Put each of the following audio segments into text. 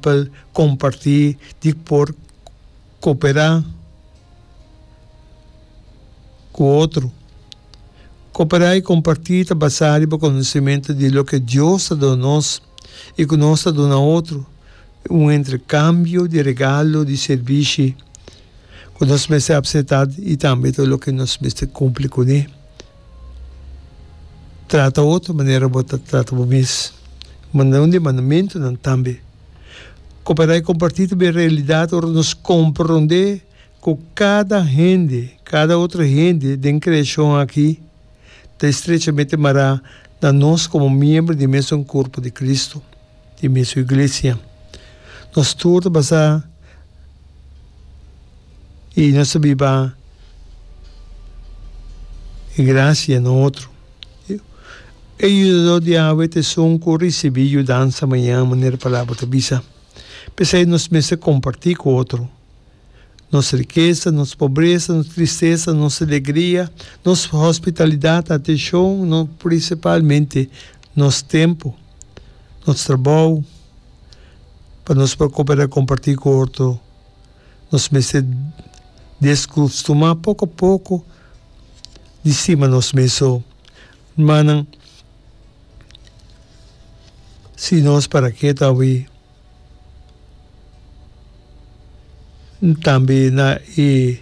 Pa el comparti di por coopera cu otro. Coopera y comparti ta basa riba conocimento di loke Dios ta duna nos y cu nos ta duna otro, un entrecambio di regalo, di servishi cu nos mester apseta y tambe ta loke nos mester cumpli cune. Trata otro manera bo ta trata bo mes. Manda un di mandamentunan tambe. Koperá i kompartí ta bin realidat ora nos komprondé ku kada hende, kada otro hende den kreashon akí ta estrechamente mará na nos komo miembro di e mesun kurpu di Kristu. di mi su iglesia. Nos tur ta basá i nos ta biba e grasia na otro. E yudadó di Yahwe ta esun ku risibí yudansa mañan, manera e Palabra ta bisa. P'esei nos mester kompartí ku otro. Nos rikesa, nos pobresa, nos tristesa, nos alegria, nos hospitalidat, atenshon, no prinsipalmente nos tempu, nos trabou, pa nos por koperá kompartí ku otro, nos mester deskustumá poko a poko di stima nos mes. So, rumannan, si nos para keta awe. Tambe na e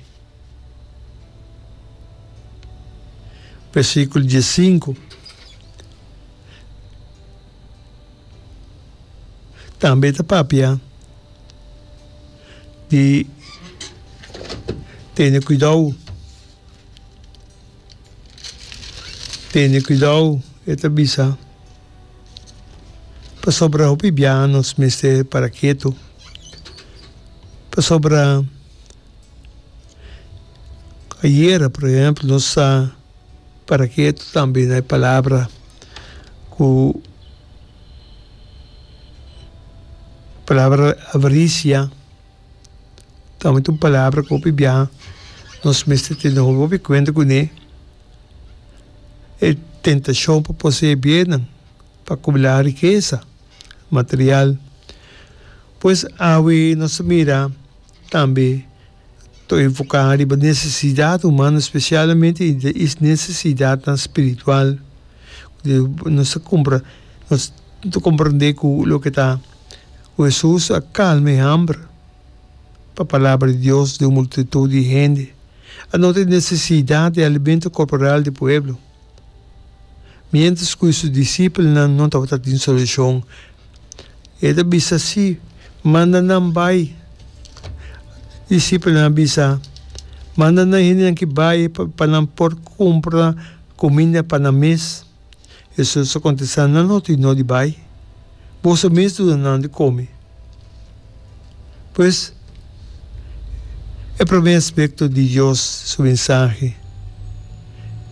versículo diezsinku tambe ta papia di tene cuidao, tene cuidao e ta bisa. Pasobra hopi biaha nos mester para ketu, pasobra ayera por ehempel nos a para ketu tambe na e palabra ku palabra avarisia. Tambe tin un palabra cu hopi biaha nos mester tene hopi cuenta cu ne, e tentacion pa posee biennan, pa acumula rikesa material. Pues awe nos ta mira tambe ta enfoca riba necesidad humano specialmente e necesidadnan spiritual nos ta comprende cu loke ta. Ku Hesus a kalma e hamber pa palabra di Dios di un multitud di hende, a nota e nesesidat di alimento korporal di pueblo, miéntras ku su disipelnan no tabata tin solushon. E ta bisa así, Manda nan bai. Disipelnan a bisa, Manda nan hendenan ki bai pa nan por kumpra kuminda pa nan mes. Hesus a kontestá, Nan no tin dor di bai, boso mes duna nan di kome. Pues, e promé aspekto di Dios su mensahe,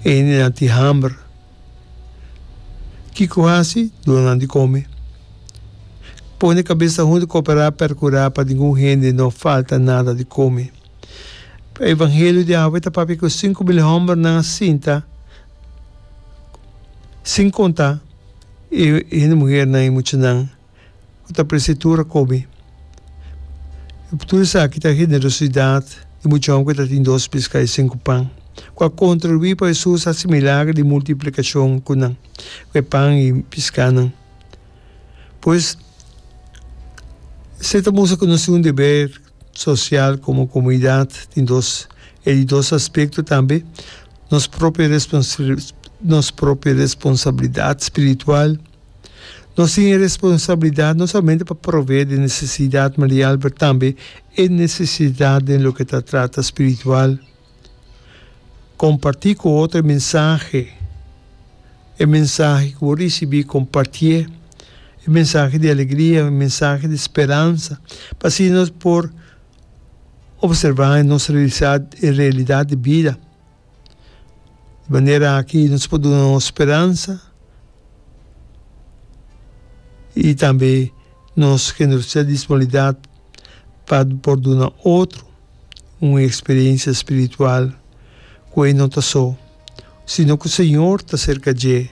e hendenan tin hamber. Kiko hasi? Duna nan di kome. Pone kabesa huntu, koperá, perkurá pa ningun hende no falta nada di kome. E evangelio di awe ta papia ku sinku mil hòmbernan a sinta. Sin konta e hende muhernan, e muchanan ku ta prese tur a kome. Tur esaki ta generosidat di muchanan ku ta tin dos piska i sinku pan, ku a kontribuí pa Hesus hasi milagro di multiplikashon ku nan, ku e pan i piskanan. Pues, esei ta mustra ku nos tin un deber. Sosial komo komunidat tin dos e di dos aspekto tambe, nos propio nos propio responsabilidat spiritual. Nos tin e responsabilidat no solamente pa provee den nesesidat material pero tambe e nesesidat den loke ta trata spiritual. Kompartí ku otro e mensahe, e mensahe ku bo risibí, kompartié. E mensahe di alegria, e mensahe di speransa, pa asina nos por opservá i nos realisá e realidat di bida. Di manera aki nos por duna nos speransa i tambe nos generositat, disponibilidat pa por duna otro. un eksperensia spiritual ku e no ta so, sino ku Señor ta serka dje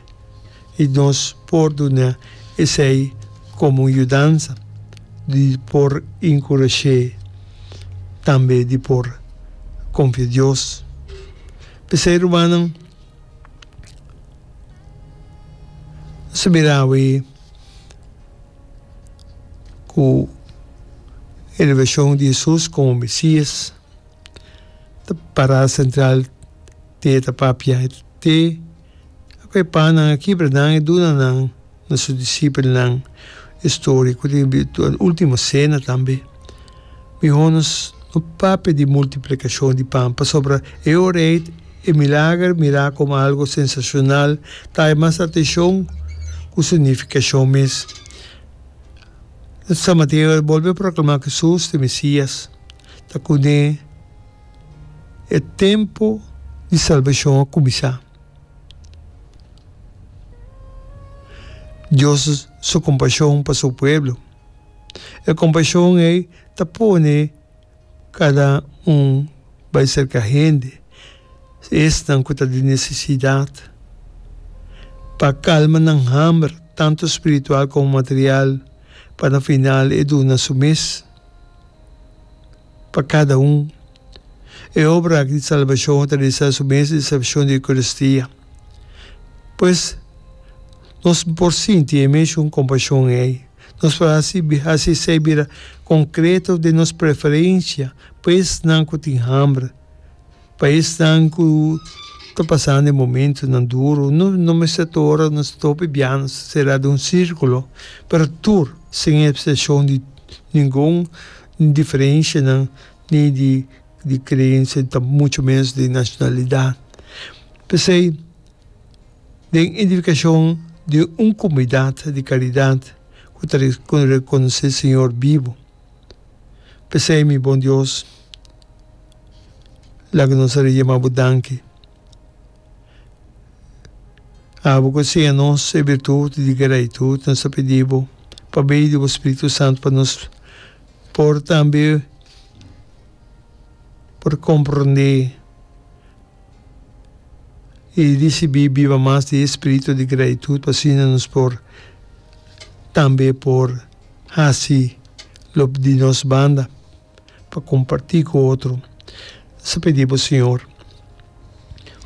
i nos por duna esei komo un yudansa di por inkurash'é, tambe di por konfia Dios. P'esei rumannan, nos a mira awe. ku e revelacion di Jesus komo Mesias ta pará sentral te e etapá biahe te ku e pannan aki Abranan e duna nan na su disipelnan e storia ku tin bira ultimo sena tambe. Mihó nos no papia di multiplikashon di pan, pasobra e ora ei e milager mirá komo algu sensashonal ta haña mas atenshon ku su nifikashon mes. San Mateo a bolbe proklamá ku Hesus ta e Mesías, ta kuné e tempu di salbashon a kuminsá. Dios su kompashon pa su pueblo. E kompashon ei ta pone kada un bai serka hende, esnan ku ta di nesesidat, pa kalma nan hamber, tantu spiritual komo material, pa na final e duna su mes. Pa kada un, e obra aki di salbashon a tradisa su mes disepshon di Eukaristia. Pues, nos por sinti e meshun kompashon ei. Nos por hasi hasi esei bira konkreto den nos preferensha pa esnan ku tin hambra. Pa esnan ku ta pasando e momentunan duru, no no mester tur ora nos ta hopi biaha nos ta sera den un sirkulo, pero tur sin epseshon di ningun diferenshanan ni di di kreensia ni tampoco mucho menos di nashonalidat. P'esei den idenfikashon di un komunidat di karidat ku ta rekonosé Señor bibu. P'esei, mi bon Dios, laga nos a yama bo danki. Abo ku a siña nos e birtut di gratitud, nos ta pidi bo pa medio di bo Spiritu Santu pa nos por tambe por komprondé i risibí biba mas di e spiritu di gratitud pa asina nos por tambe por Hasi lo di nos banda pa kompartí ku otro. Nos a pidi bo, Señor,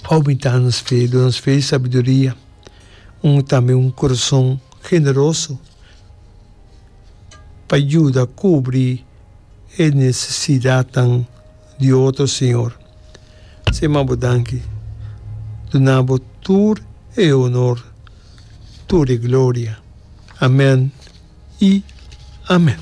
oumentá nos fe, duna nos fe i sabiduria, un tambe un kurason generoso pa yuda kubri e nesesidatnan. di otro siñor. Sin m'a bo danki, duna bo tur e onor, tur e gloria. Amen i amen.